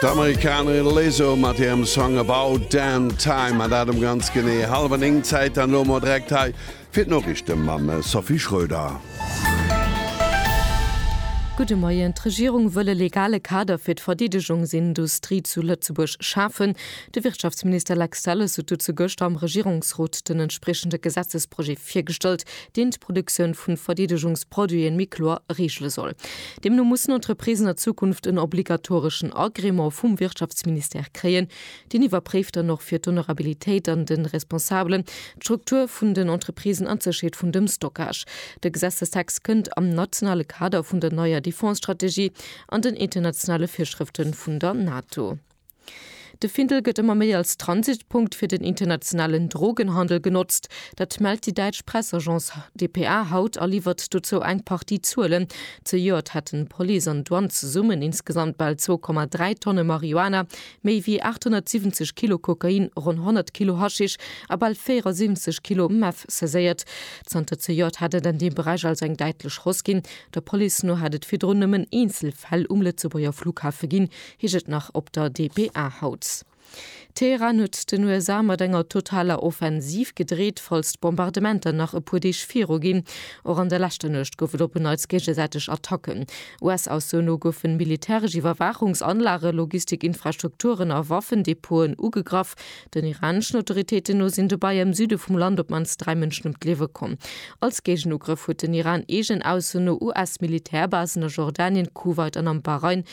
D'Amerikaner Lizzo mat hirem Song About Damn Time, an dat um ganz genee hallwer 9 Zäit. An elo mol direkt hei fir d'Noriichte mam Sophie Schröder. Gudde Moien. D'Regierung wëll e legale Kader fir d'Verdeedegungsindustrie zu Lëtzebuerg schafen. De Wirtschaftsminister Lex Delles huet dozou gëschter am Regierungsrot den entspriechende Gesetzesprojet virgestallt, deen d'Produktioun vu Verdeedegungsproduiten méi kloer reegele soll. Deemno mussen Entreprisen a Zukunft en obligatoreschen Agrément vum Wirtschaftsministère kréien. Deen iwwerpréift dann och fir d'Honorabilitéit an de Responsabelen, d'Struktur vun den Entreprisen an d'Sécherheet vun dem Stockage. De Gesetzestext kënnt am nationale Kader vun der neier Defense-Strategie an den internationale Virschrëfte vun der NATO. De Findel gëtt ëmmer méi als Transitpunkt fir den internationalen Drogenhandel genotzt. Dat mellt déi däitsch Pressagence dpa haut a liwwert dozou eng Partie Zuelen. Zejoert hätten Police an Douane zesummen insgesamt bal 2,3 Tonne Marihuana, méi wéi 870 Kilo Kokain, ronn 100 Kilo Haschisch a bal 74 Kilo Meth saiséiert. Zanter zejoert hätt et an deem Beräich also eng däitlech Hausse ginn. Der Police no hätt et virdrun nëmmen eenzel Fäll um Lëtzebuerger Flughafe ginn, Heescht et nach op der dpa haut. Teheran huet den USA mat enger totaler Offensiv gedreet, falls d'Bombardementer nach e puer Deeg viru ginn. Och an der leschter Nuecht gouf et op en Neits géigesäiteg Attacken. US-Aussoen no goufen militäresch Iwwerwaachungsanlage, Logistikinfrastrukturen a Waffendepoten ugegraff. Den iraneschen Autoritéiten no sinn dobäi am Süde vum Land op d'mannst dräi Mënschen ëm d'Liewe komm. Als Géigenugrëff huet den Iran eegen Aussoen no US-Militärbasen a Jordanien, Kuwait an am Bahrain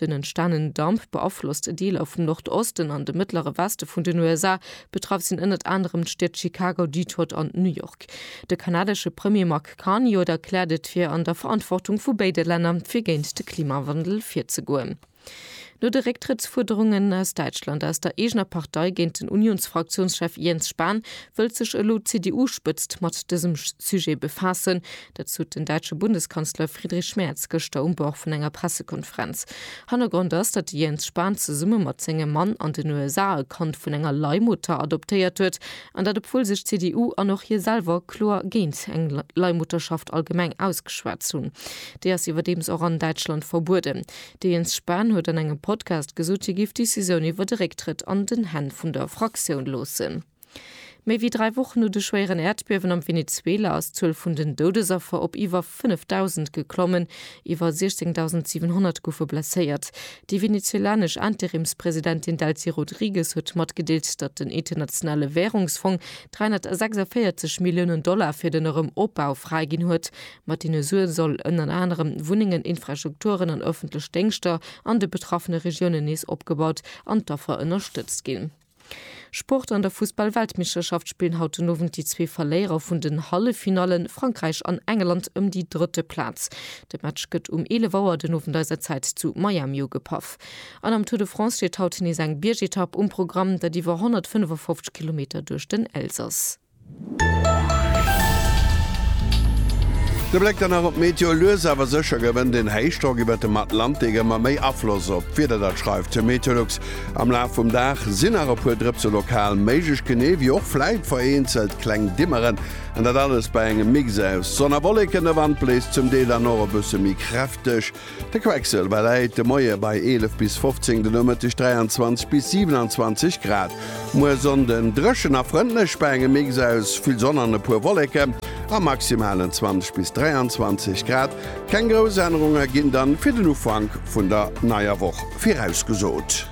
Den entstanenen Damp beaflosst Deeler vum Nordosten an de mëttlere Weste vun den USA. Betraff sinn ënnert anerem d'Stied Chicago, Detroit an New York. De kanadesche Premier Mark Carney oder erkläert et fir an der Verantwortung vu béide Länner fir géint de Klimawandel virzegoen. No de Récktrëttsfuerderungen aus Däitschland aus der eegener Partei géint den Unionsfraktiounschef Jens Spahn, wëllt sech elo d'CDU-Spëtzt mat dësem Sujet befaassen. Dat sot den däitsche Bundeskanzler Friedrich Merz gëschter um Bord vun enger Pressekonferenz. Hannergrond ass, datt de Jens Spahn zesumme mat sengem Mann an den USA e Kand vun enger Leihmutter adoptéiert huet, an dat obwuel sech d'CDU an och hie selwer kloer géint eng Leihmutterschaft allgemeng ausgeschwat hunn. Déi ass iwwerdeems och an Däitschland verbueden. De Jens Spahn huet an engem Podcast gesot, hie géif d'Decisioun iwwer de Récktrëtt an den Hänn vun der Fraktioun loossen. Méi wéi dräi Wochen no de schwéieren Äerdbiewen am Venezuela ass d'Zuel vun den Doudesaffer op iwwer 5.000 geklommen. Iwwer 16.700 goufe blesséiert. Déi venezuelanesch Interimspresidentin Delcy Rodrigues huet matgedeelt, datt den Internationale Wärungsfong 346 Milliounen Dollar fir den Erëm Opbau fräiginn huet. Mat deene Sue soll ënner anerem Wunnengen, Infrastrukturen an ëffentlech Déngschter an de betraffene Regiounen nees opgebaut an d'Affer ënnerstëtzt ginn. Sport An der Fussball-Weltmeeschterschaft spillen haut den Owend déi zwee Verléierer vun den Halleffinallen, Frankräich an Engeland, ëm déi drëtte Plaz. De Match gëtt um 11 Auer den Owend eiser Zäit zu Miami ugepaff. An am Tour de France steet haut nees eng Biergetapp um Programm, dat iwwer 155 Kilometer duerch den Elsass. De Bléck dann nach op d'Meteo, Lues awer sécher gewënnt een Héichdrock iwwert dem Atlantik ëmmer méi Afloss op d'Wieder. Dat schreift de Meteolux. Am Laf vum Dag sinn nach e puer Drëpse lokal méiglech, genee wéi och vläit vereenzelt kleng Dimmeren. An dat alles bei engem Mix aus Sonn a Wolleken. De Wand bléist zum Deel dann och e bësse méi kräfteg. De Quecksëlwer läit de Moie bei 11 bis 15, de Nomëtteg 23 bis 27 Grad. Muer Sonnden dréchen a frëndlech bei engem Mix aus vill Sonn an e puer Wolleken a maximalen 20 bis 23 Grad. Keng grouss Ännerunge ginn dann fir den Ufank vun der neier Woch virausgesot.